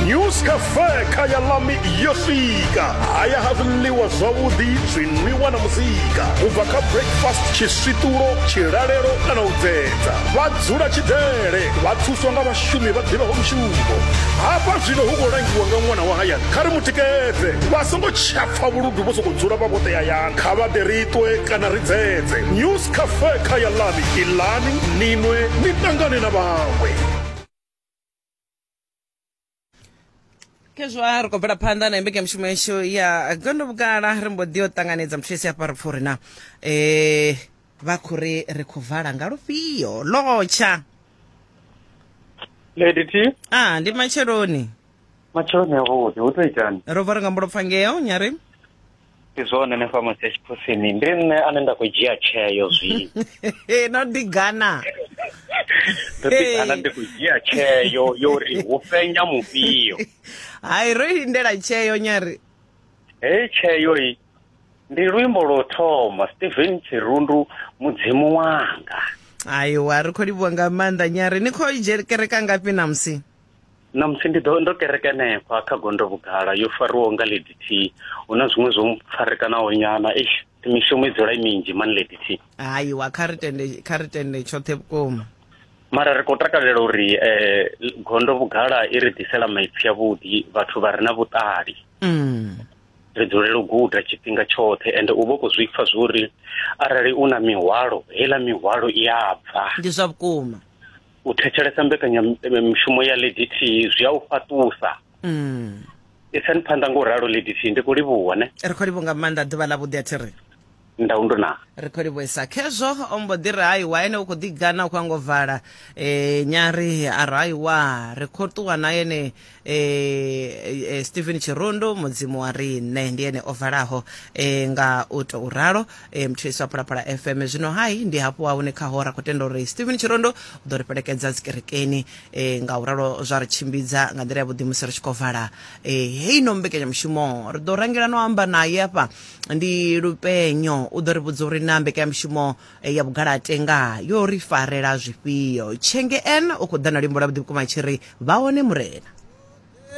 news cafe kha ya lami yo swika haya ha zwiḽiwa zwavhuḓi zwinwiwa na muzika u bva kha breakfast tshiswiṱulo tshilalelo kana u dzedza vha dzula tshidele vha thuswa nga vhashumi vha ḓivhaho mushumo hafha zwino hu khou langiwa nga ṅwana wa hayani kha ri mu tikedze vha songo tshapfa vhuludu vho sokou dzula vha vhoṱe hayani kha vha ḓe ri ṱwe kana ri dzedze news cafe kha ya lami iḽani ninwe ni ṱangane na vhaṅwe khezwo a ri khou bvela phanḓa na mbekanyamushumo yashu ya gondo vhugala ri mbo ḓi o ṱanganedza muthu esi hafha ri pfha uri na um vha khou ri ri khou vala nga lufhio lotsha lady t a ndi matsheloni matsheloni avhuḓi hu to itani ro bva ri nga mbulopfa ngeo nyari ndi zwone hanefha musi ya tshiphusini ndi nṋe ane nda khou dzhia tsheo zwi no ḓigana ndo ḓigana ndi khou dzhia tsheo yo ri hu fhenya mufhio hai ro lindela tsheo nyari heyi tsheo i ndi luimbo lwo thoma stephen tshirundu mudzimu wanga aiwa ri khou livhuwa nga maanḓa nyari ni khou kereka ngafhi namusi na musi ndi ḓo ndo kereke henefha kha gondo vhugala yo fariwaho nga lady t hu na zwiṅwe zwo farekanaho nyana eish mishumo i dzula i minzhi mani lady t hayiwa kha ri tende kha ri tende tshoṱhe vhukuma mara ri khou takalela uri um gondo vhugala i ri ḓisela maipfi avhuḓi vhathu vha re na vhuṱali mm. ri dzulela u guda tshifhinga tshoṱhe ende u vha u khou zwi pfa zwo uri arali u na mihwalo heiḽa mihwalo i a bva ndi zwa vhukuma u thetshelesa mbekanyamushumo ya lady t zwi a u fhaṱusa mm. isani phanḓa nga u ralo lady t ndi khou livhuwa ne ri khou livhuwa nga maanḓa ḓuvha ḽa vhuḓi a thi ri ndau ndo na ri khou livhuisa khezwo o mbo ḓi ri haiwa ene u khou ḓi gana u khou ango vala um nyari a ri haiwa ri khou ṱuwa na yene e, e, stephen chirondo mudzimu wa riṋe ndi ene o valaho e, nga u tou ralo e, mthulisi wa phalaphala fm zwino hai ndi hafhu wa hune khaho ra khou tenda uri stephen chirondo u ḓo ri fhelekedza dzikerekeni e, nga u ralo zwa ri tshimbidza nga nḓila ya vhuḓi musi ri tshi khou vala e, heyi no mbekanyamushumo ri ḓo rangela no amba naye afha ndi lupenyo u ḓo ri vhudza uri na mbekanyamushumo ya vhugalate nga yo ri farela zwifhio tshenge en o khou ḓa na luimbo lwa vhuḓi vhukuma tshi ri vha hone murena